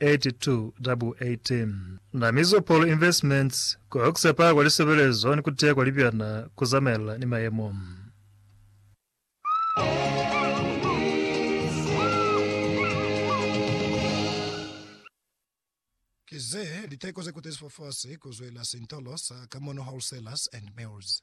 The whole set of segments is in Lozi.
8218 Na Mizopol Investments ku Oxepa kwa Lisebelezo ni ku Teya kwa Libyana ku Zamaelana ni Mayemo. Ki ze liteko ze kutezi fafasi ku zwela sintolo sa Kamono Wholesalers and Mills.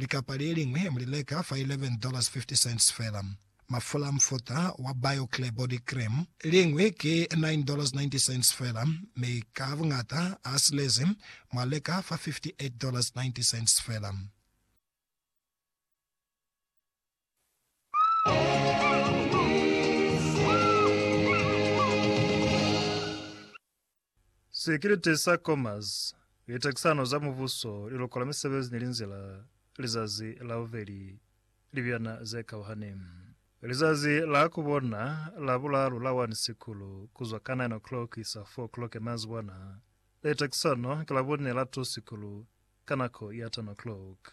Likapa le liñwi mu li leka fa $11.50 fela. Mafula a mufuta wa BioClear Body Cream, liñwi ki $9.90 fela, mi ka buñata a silezi mu a leka fa $58.90 fela. Sikiliti sa Commerce, Litekisano za Mubuso, Liluko la Misebezi ni Linzila, Lizazi la Bubeli, Libyana ze Kauhani. Lizazi la ku bona la bulalu la 1 Sikulu, ku zwa ka 9 o'clock ku isa 4 o'clock ya mazibwana. Litekisano ki Labune la 2 Sikulu, ka nako ya 10 o'clock.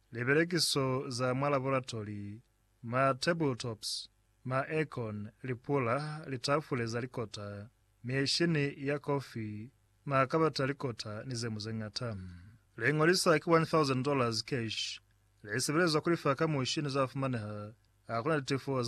Lipelekiso za mwa laboratori, ma tabletops, ma aircon, lipula, litafule za likota, mishini ya kofi, makabati a likota ni ze mu ze ñata. Le ñolisa ki $1,000 cash. Le sebelezwa ku lifa ka mushi ni za fumaneha. Ha ku na litefo za